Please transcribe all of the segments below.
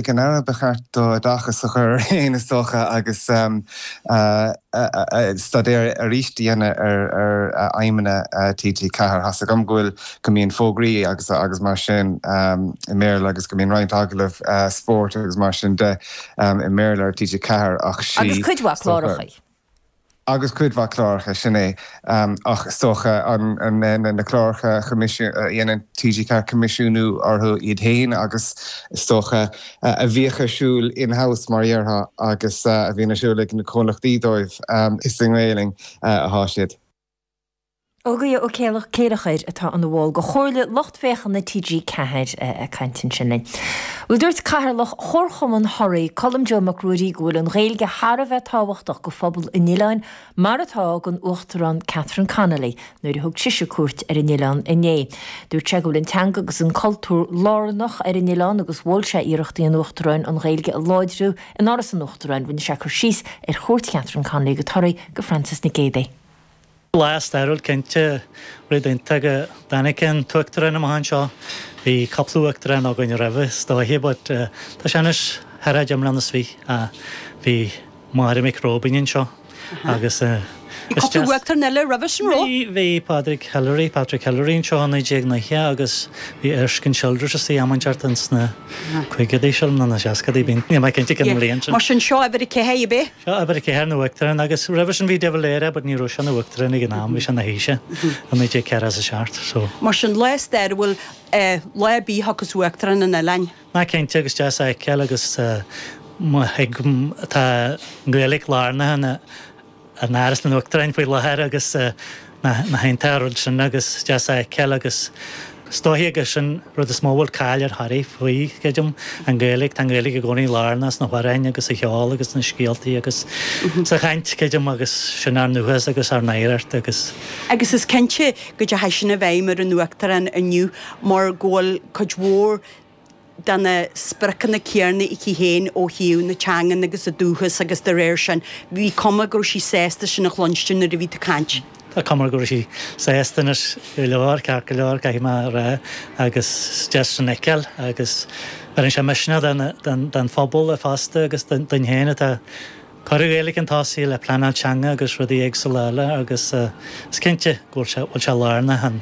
Ag an Aire ba cheart dó oideachas a chur air fhéin is dócha agus staidéar arís a dhéanamh ar aidhmeanna TG4. Tá a fhios agam go bhfuil, go mbíonn fógraí agus mar sin i mBéarla agus go mbíonn roinnt agallamh spóirt agus mar sin de i mBéarla ar TG4 ach sin is dócha. Agus cuid mhaith clárachaí. agus cuid mhaith cláracha, sin é. Ach is dócha na cláracha a dhéanann TG4 coimisiúnú orthu iad féin agus is dócha a bhíodh ar siúl in-house mar a dhéarfá agus a bhíonn ar siúl ag na comhlachtaí dóibh, is i nGaelainn atá siad. Ógie Ó Céilleachair atá ina bhall de chomhairle lucht féachana TG 4 ag caint ansin linn. Bhuel dúirt Cathaoirleach Chomharchumann Thoraí, Colm Joe Mac Ruairí go bhfuil an Ghaeilge thar a bheith tábhachtach do phobal an oileáin mar atá ag an Uachtarán Catherine Connolly nuair a thug sise cuairt ar an oileán inné. Dúirt sé go bhfuil an teanga agus an cultúr lárnach ar an oileán agus mhol sé iarrachtaí an Uachtaráin an Ghaeilge a láidriú in Áras an Uachtaráin. Rinne sé cur síos ar chuairt Catherine Connolly go Toraigh do Frances Nic Géadaigh. Lá stairiúil cinnte, rud iontach go dtáinig an tUachtarán amach anseo. Bhí cúpla Uachtarán againn roimhe is dóiche but tá sé anois thar fhad iomlán is bhí. Bhí Máire Mhic Róibín anseo agus is deas. Cúpla Uachtarán eile roimhe sin raibh? Bhí Pádraig Hillery, Patrick Hillery anseo i 1990 agus bhí Erskine Childers is dóigh am an ceart ins na caogadaí sin nó na seascadaí bhí, níl mé cinnte cén bhliain sin. Mar sin seo uimhir a ceathair, ab é? Seo uimhir a ceathair, na hUachtaráin agus roimhe sin bhí de Valera but ní raibh sé ina Uachtarán ag an am, bhí sé ina Thaoiseach i 1947 so. Mar sin lá stairiúil lá ar bith a dtiocfas Uachtarán chun an oileáin. Ó cinnte agus deas a fheiceáil agus tá an Gaeilic lárnaithe in Áras an Uachtaráin faoi láthair agus an-iontach an rud sin agus deas a fheiceáil agus is dóiche gur sin rud is mó a bhfuil cáil ar Thoraigh faoi, céadna an Gaeilge tá an Gaeilge i gcónaí lárnach sna hamhráin agus sa cheol agus sna scéaltaí agus sa chaint céadna agus sin ár ndúchas agus ár n-oidhreacht agus. Agus is cinnte go dteachaidh sin i bhfeidhm ar an Uachtarán inniu mar go bhfuil cuid mhór de na spriocanna céanna aici féin ó thaobh na teangan agus a dúchas agus de réir sin bhí cuma go raibh sí sásta sin a chluinstin nuair a bhí tú ag caint. Tá cuma go raibh sí sásta anois go leor, ceart go leor caithfidh mé a rá agus is deas sin a fheiceáil agus bheireann sé misneach don phobal fosta agus dúinn féin atá cur Gaeilge chun tosaigh le pleanáil teanga agus rudaí éagsúla eile agus is cinnte go bhfuil sé lárnach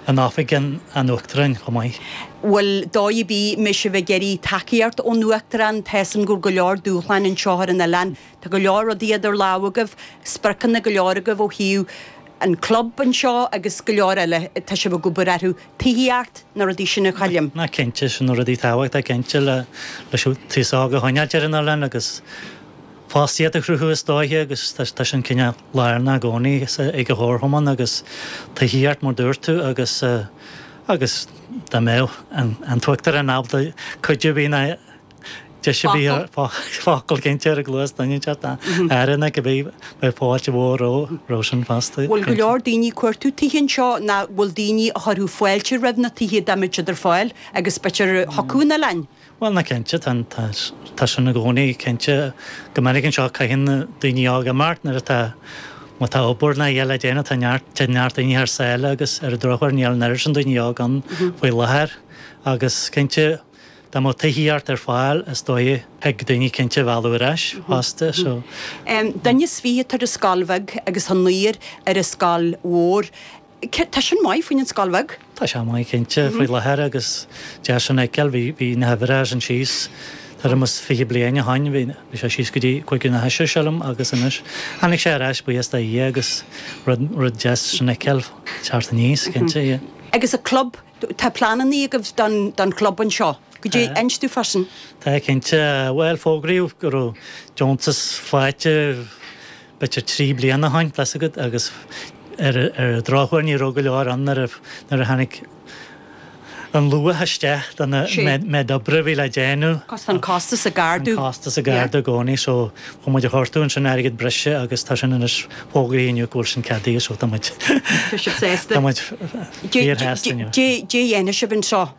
in Oifig an Uachtaráin chomh maith. Bhuel, dóigh ar bith, an mbeidh sibh ag iarraidh tacaíocht ón Uachtarán, tá 'fhios a'm go bhfuil go leor dúshláin anseo ar an oileán, tá go leor rudaí idir lámha agaibh, spriocanna go leor agaibh ó thaobh an club anseo agus go leor eile, tá sibh ag obair orthu, tithíocht na rudaí sin a chailliam. Nach cinnte, sin na rudaí tábhachtacha cinnte, leis an t-aos óg a choinneáilt ar an oileán agus fostaíocht a chruthú is dóiche agus tá sin cineál lárnach i gcónaí ag an gComharchumann agus tithíocht mar a dúirt tú agus, agus dá mbeadh an tUachtarán ábalta cuidiú bhí na. Deis a bhí focal cinnte a chur i gcluas duine inteacht ar ndóigh bheadh beidh fáilte mhór roimh sin fosta. Bhfuil go leor daoine ag cuartú tithe anseo ná bhfuil daoine a chuirfeadh fáilte roimh na tithe dá mbeadh siad ar fáil agus b'fhéidir a thiocfadh chun an oileáin? Bhuel ná cinnte tá tá sin i gcónaí cinnte go minic anseo caitheann daoine óga imeacht nuair atá má tá obair ná eile le déanamh tá neart téann neart daoine thar sáile agus ar an drochuair níl an oiread sin daoine óga ann faoi láthair agus cinnte Dá mbeadh tithíocht ar fáil, is dóigh thig daoine cinnte a mhealladh ar ais fosta, so. Duine is fiche atá ar an scoil bheag agus naonúr ar an scoil mhór. Tá sin maith faoin scoil bheag? Tá sé maith cinnte, faoi láthair agus deas sin a fheiceáil. Bhí na huimhreacha sin síos tuairim is fiche bliain ó shoin. Bhí sé síos go dtí cúig nó a sé sílim agus anois tháinig sé ar ais buíochas do Dhia agus rud deas sin a fheiceáil teacht aníos, cinnte, yeah. Agus an club Tá pleanannaí agaibh don chlub anseo, cad é inis dúinn faoi sin? Tá cinnte. Bhuel, fógraíodh go raibh deontas faighte, b'fhéidir trí bliana ó shoin, tá's agat, agus ar an drochuair ní raibh go leor ann nuair a tháinig an luach isteach don méid oibre a bhí le déanamh. Tá an costas ag ardú. Tá an costas ag ardú i gcónaí so chuaigh muid a chuartú ansin airgead breise agus tá sin anois fógraithe inniu go bhfuil sin ceadaithe so tá muid, tá muid, Níor theastaigh uaim. Caidé a dhéanas sibh anseo?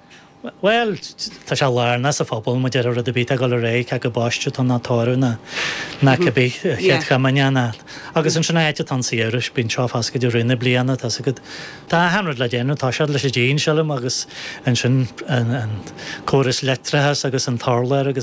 Bhuel, tá sé lárnach sa phobal, maidir le rud ar bith tá ag dul ar aghaidh, tá's agat baisteadh ná tórramh ná ná cé bith chéad chomaoineach ná. Agus ansin go háirid sa tsamhradh, bíonn seo foscailte i rith na bliana, tá's agat. Tá achan rud le déanamh, toiseacht leis an díon sílim agus ansin an córas leictreachais agus an t-urlár agus.